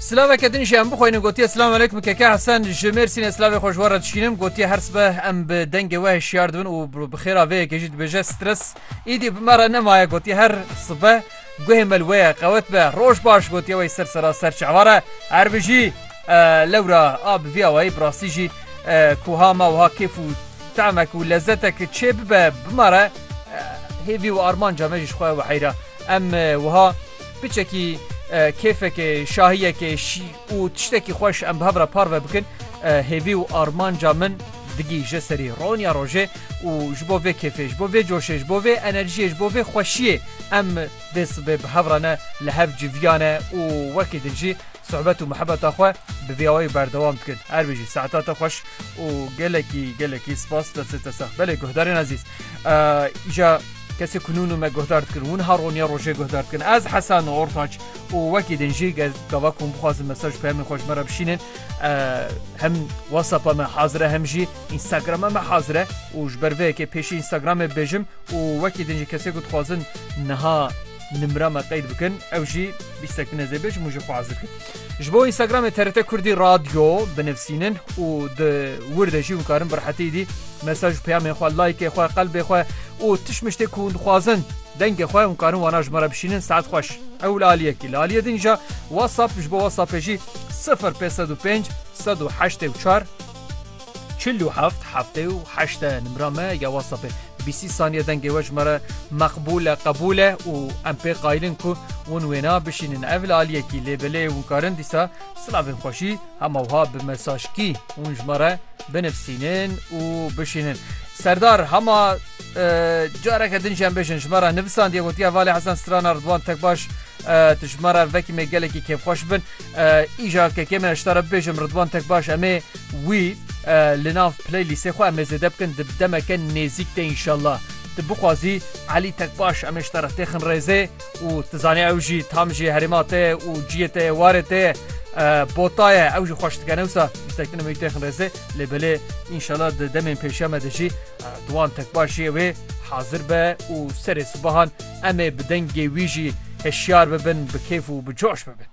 Silaveke din jî em bixwînin gotiye Silam aleykum keke Hesen ji Mêrsînê silavê xwe ji we re dişînim gotiye her sibe em bi dengê we hişyar dibin û bi xêra vê yekê jî dibêje stres îdî bi me re nemaye gotiye her sibe guhê me li wê ye qewet be roj baş gotiye wê ser sera ser çavare her bijî lewra a bi vî awayî bi rastî jî kuha me wiha kêf û temek û lezetek çê bibe bi me re hêvî û armanca me jî ji xwe we heyra Em wiha piçekî kêfekê, şahiyekê şî û tiştekî xweş em bi hev re parve bikin, hêvî û armanca min digî ji serî roniya rojê û ji bo vê kêfê, ji bo vê coşê, ji bo vê enerjiyê, ji bo vê xweşiyê em dê sibê bi hev re ne li hev civiyane û wekî din jî Sohbet û muhebeta xwe bi vî awayî berdewam dikin. Her wî jî saeta te xweş û gelekî gelekî spas destê te sax. Belê guhdarên ezîz îja kesê ku nûnû me guhdar dikin hûn ha roniya rojê guhdar dikin ez hesan û ortaç û wekî din jî gel gava ku hûn bixwazin mesaj peyamên xweş me re bişînin hem whatsapp me hazire hem jî instagrama me hazire û ji ber vê yekê pêşî instagramê bêjim û wekî din jî kesê ku dixwazin niha Nimra me qeyd bikin ew jî bîstek bine zê bê ji min jî xwe ezir kir. Ji bo Instagramê TRT Kurdî Radyo binivsînin û di wir de jî hûn karin bi rehetî dî mesaj û peyamên xwe, laykê xwe, qelbê xwe û tişt miştê ku hûn dixwazin dengê xwe hûn karin wana ji me re bişînin saet xweş. Ew li alî yekî li alîyê din ja WhatsApp ji bo WhatsAppê jî sifir pêz sed û pênc sed û heştê û çar Çil û heft, heftê û heşt e nimra me ya WhatsAppê. Bîsî saniye dengê we ji me re meqbûl e, qebûl e û em pê qayîl in ku hûn wêna bişînin ev li aliyekî lê bi lê hûn karin dîsa silavên xweşî hema wiha bi mesajkî hûn ji me re binivîsînin û bişînin. Serdar hema careke din jî em bêjin ji me re nivisandiye gotiye Valê Hesen Strana Ridwan Tekbaş tu ji me re vekî me gelekî kêfxweş bin. Îcar kekê me hişta re bibêjim Ridwan Tekbaş em ê wî li nav playlîstê xwe em ê zêde bikin di demeke nêzîk de înşallah. Tu bixwazî Elî Tekbaş em ê ji te re têxin rêzê û tu zanî ew jî tam ji herêma te ye û ciyê te yê warê te ye bota ye ew jî xweş dike ne wisa ji te em ê wî têxin rêzê lê belê înşallah di demên pêşiya me de jî Ridwan Tekbaş jiyê wê hazir be û serê sibahan Em ê bi dengê wî jî hişyar bibin, bi kêf û bi coş bibin.